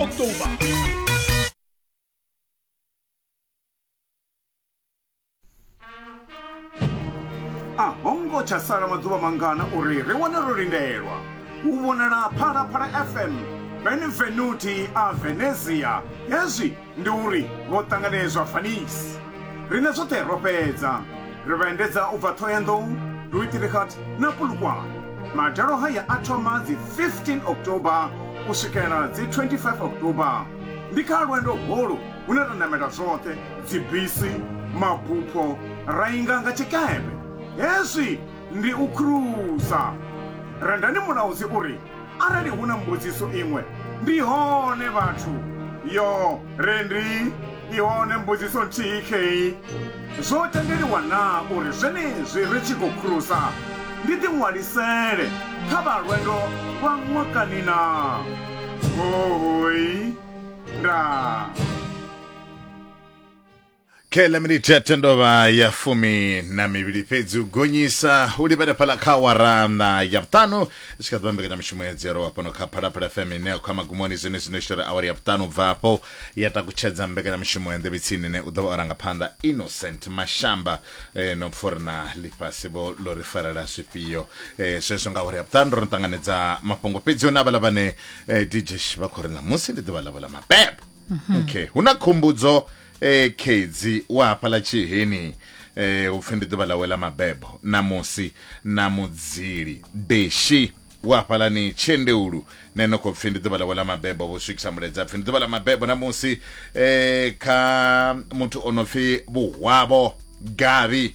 October. a ho ngo tsha sala maḓuvha mangana uri ri wane ro lindelwa u vhonala phalaphala fm benvenuti a venezia hezwi ndi uri vho ṱanganedzwa fanisi Rine zwoṱhe ro fhedza ri vha endedza u bva Thohoyandou, Duitirigat na Polokwane. Madalo haya a thoma dzi 15 October u swikela dzi 25 October. Ndi kha lwendo holu hune ra namela zwoṱhe dzibisi, mabupho ra inga nga tshikepe. Hezwi ndi u khulusa. Rendani mulaudzi uri Arali hu na mbudziso iṅwe, ndi hone vhathu. Yo, re ndi i hone mbudziso nthihi khei. Zwo tendeliwa na uri zwenezwi ri tshi khou khulusa ndi ḓiṅwalisele kha vha lwendo lwa ṅwakani na? Huhuy! Ndaa! khe ḽa minithe ya tendovha ya fumi na mivhili fhedzi u gonyisa u livhele fhala kha warana ya vhuṱanu i tshi kha ḓivha mbekanyamushumo ya dzero wa fhano kha phalaphala fm ine ya khou ya magumoni zwine zwino i shela awari ya vhuṱanu bva hafho ya takutshedza mbekanyamushumo ya nḓevhetsini ine u ḓo vha o ranga phanḓa innocent mashamba eh, no pfha uri na ḽifhasi vho ḽo ri farela zwifhio eh, zwezwo nga awari ya vhuṱanu ro no ṱanganedza mafhungo fhedzi hone avhaḽa vhane eh, dj vha khou ri ṋamusi ndi ḓuvha ḽavho ḽa mabebo okay hu na khumbudzo ee khedzi wa hafhaḽa tshiheni eh upfi ndi ḓuvha ḽawe ḽa mabebo ṋamusi na mudzili beshi wa hafhalani tshendeulu ne no khou pfi ndi ḓuvha ḽawe ḽa mabebo vho swikisa muledza pfi ndi ḓuvha ḽa mabebo ṋamusi eh kha muthu o no pfi vhuhwavho gavi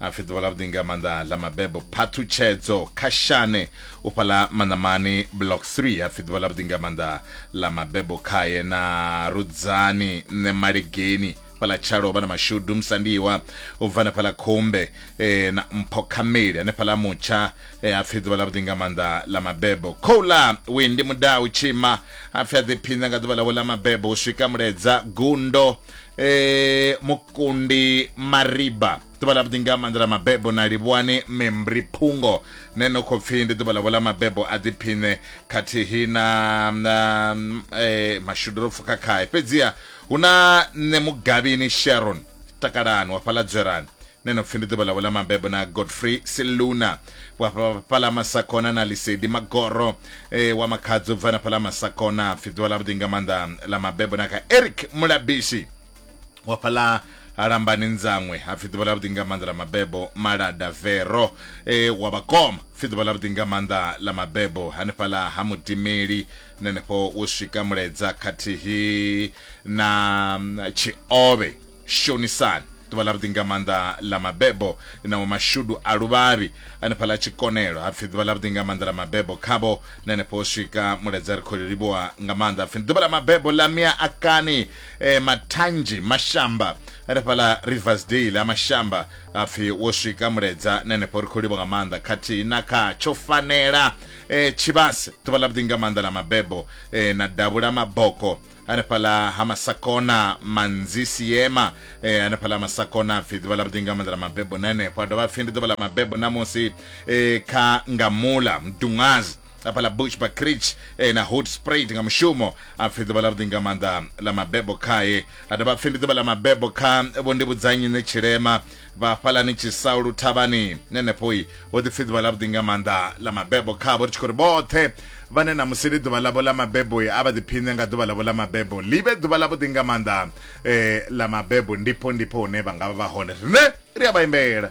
a pfi ḓuvha ḽavhuḓi nga maanḓa ḽa mabebo phaṱhutshedzo kha shane u fhaḽa manamani block 3 a pfi ḓuvha ḽavhuḓi nga maanḓa ḽa mabebo khaye na rudzani nṋe malegeni fhaḽa tshalo vha na mashudu musandiwa u bva na fhaḽa khumbe e, na mpho khameli hanefhaḽa mutsha e, a pfi ḓuvha ḽavhuḓi nga maanḓa ḽa mabebo khoula wendi mudau tshima a pfi a ḓiphinza nga ḓuvha ḽawe ḽa mabebo u swika muledza gundo eh, mukundi mariba ḓuvha ḽa vhuḓi nga maanḓa ḽa mabebo na livhuwani membri phungo ne no khou pfhi ndi ḓuvha ḽavho ḽa mabebo a ḓiphiṋe khathihi na na, eh, mashudu ro pfuka khae fhedziha hu na nṋe mugavhini sharon takalani wa fhaḽa dzwerani ne no pfi ndi ḓuvha ḽawe ḽa mabebo na godfrey siluna wa fhala masakona na lisedi magoro e, wa makhadzi u bva na fhala masakona pfi ḓuvha ḽa vhuḓi nga maanḓa ḽa mabebo na kha eric mulabishi wa fhala lambani nzanwe hapfi ḓuvha ḽa vhuḓi nga maanḓa ḽa mabebo malada vero e, wa vhakoma pfi ḓuvha ḽa vhuḓi nga maanḓa ḽa mabebo hanefhaḽa ha mutimeli nenefho wo swika muledza khathihi na tshiove Shonisani, ḓuvha ḽavhuḓi nga maanḓa ḽa mabebo na wa mashudu a luvhavhi. Hanefhaḽa tshikonelo ha pfi ḓuvha ḽavhuḓi nga maanḓa ḽa mabebo khavho, na henefho ho swika muledzi a ri khou livhuwa nga maanḓa a pfi ndi ḓuvha ḽa mabebo ḽa Mia Akani e, Mathanzhi Mashamba. Hanefhaḽa Riversdale ha Mashamba ha pfi wo swika muledza na henefho ri khou livhuwa nga maanḓa khathihi na kha tsho fanela e, Tshivhase ḓuvha ḽavhuḓi nga maanḓa ḽa mabebo e, na Davhula Maboko hanefhaḽa ha masakona manzisi yema eh, hanefhaḽa ha masakona pfhi ḓuvha ḽa vhuḓi nga maanḓa ḽa mabebo na henefho a dovha pfhi ndi ḓuvha ḽa mabebo namusi eh, kha ngamula mdungazi hafhaḽa bush bacrich eh, na hood sprayed nga mushumo a pfhi ḓuvha ḽa vhuḓi nga maanḓa ḽa mabebo khae a dovha pfhi ndi ḓuvha ḽa mabebo kha vho ndivhudzanyi ne tshilema vha hafhalani tshisaulu thavhani nenefhoi ho ḓi pfi ḓuvha ḽa vhuḓi nga maanḓa ḽa mabebo khavho ri tshi khou ri vhoṱhe vhane na musi ḽi ḓuvha ḽavho ḽa mabebo a vha ḓiphiṋe nga ḓuvha ḽavho ḽa mabebo ḽi vhe ḓuvha ḽa vhuḓi nga maanḓa um ḽa mabebo ndipo ndipo hune vha nga vha vha hone rine ri a vha imbela